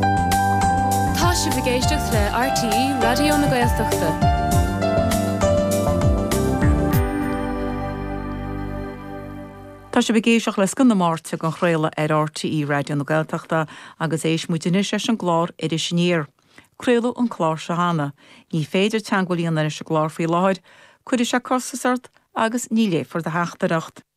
Tá sibh ag éisteacht le RTÉ Raidió na Gaeltachta. Tá sibh ag éisteacht le Scoth na Máirt dhá chraoladh ar RTÉ Raidió na Gaeltachta agus éistfidh muid anois leis an gclár Iris Aniar. Craoladh an clár seo cheana. Ní féidir teagmháil a dhéanamh leis an gclár faoi láthair. Cuirfidh sé costas ort agus ní léifear do theachtaireacht.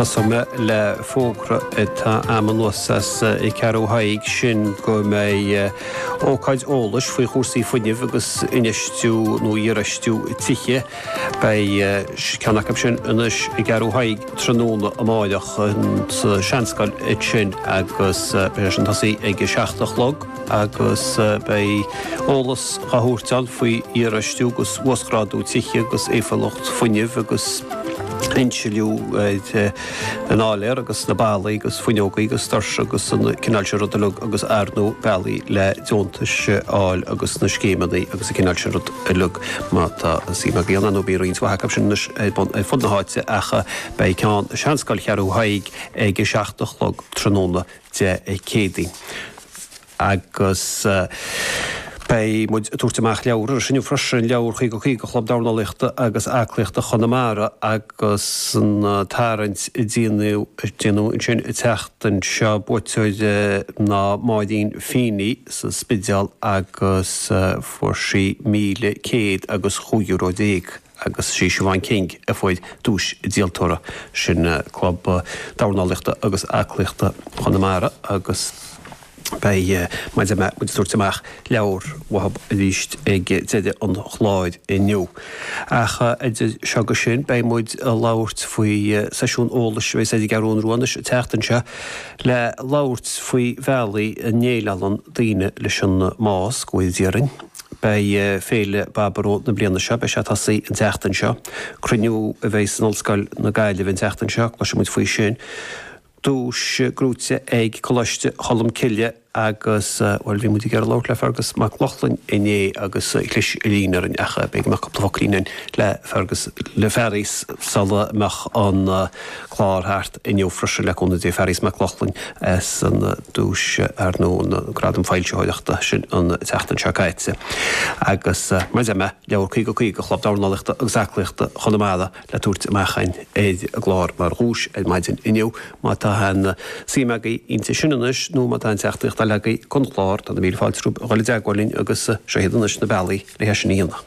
Tosóidh mé le fógra atá agam anuas as Ceathrú Thaidhg sin go mbeidh ócáid eolais faoi chúrsaí fuinnimh agus infheistiú nó iarfheistiú tithe. Beidh ceann acu sin anois i gCeathrú Thaidhg tráthnóna amáireach sa seanscoil ansin agus beidh sé sin ag tosaí ag a seacht a chlog. agus beidh eolas á thabhairt ann faoi iarfheistiú agus uasghrádú tithe agus éifeachtúlacht fuinnimh agus insliú an áiléir agus na ballaí agus fuinneogaí agus doirse agus an cineál sin rud uilig agus ar ndóigh bealaí le deontais a fháil agus na scéimeanna agus an cineál sin rud uilig má tá suim agaibh ann nó bíonn roinnt mhaith acu sin anois ar bun ar fud na háite ach beidh ceann seanscoil Cheathrú Thaidhg ag a seacht a chlog tráthnóna Dé Céadaoin agus beidh muid ag tabhairt amach leabhar arís inniu freisin, leabhar 'Caoga Caoga' Chlub Dornálaíochta agus Aclaíochta Chonamara agus an tarraingt a déanadh ansin an tseachtain seo. Buaiteoir ná Máirín Feeney sa Spidéal agus fuair sí míle céad agus chúig euro déag. agus sí Siobhan King a fuair duais an díoltóra ansin Club Dornálaíochta agus Aclaíochta Chonamara agus beidh muid ag tabhairt amach leabhar uathub arís ag deireadh an chláir inniu. Ach idir seo agus sin beidh muid ag labhairt faoi seisiún eolais a bheidh siar ar an gCeathrú Rua anois an tseachtain seo le labhairt faoi bhealaí a ndéileálann daoine leis an mbás, go bhfóire Dia orainn. Beidh Féile Baboró na bliana seo, beidh sé ag tosaí an tseachtain seo. Cruinniú a bheidh san Ollscoil na Gaillimhe an tseachtain seo, cloisfidh muid faoi sin. Duais gnóthaithe ag Coláiste Cholm Cille agus, bhuel, bhí muid ag iarraidh labhairt le Fearghas Mac Lochlainn inné agus chlis an líne orainn ach beidh beidh cúpla focailín againn le Fearghas, le Fearghas sula mbeidh an clár thart inniu freisin le cúnamh Dé Fearghas Mac Lochlainn as an duais ar nó an gradam foilsitheoireachta sin an tseachtain seo caite. Agus mar a deir mé, Leabhar Caoga Caoga Chlub Dornálaíochta agus Aclaíochta Chonamara le tabhairt amach ar an gclár mar dhuais ar maidin inniu. Má tá aon suim agaibh inti sin anois nó má tá aon teachtaireacht eile agaibh don chlár, tá na míle fáilte romhaibh a dhul i dteagmháil linn agus seo iad anois na bealaí le hé sin a dhéanamh.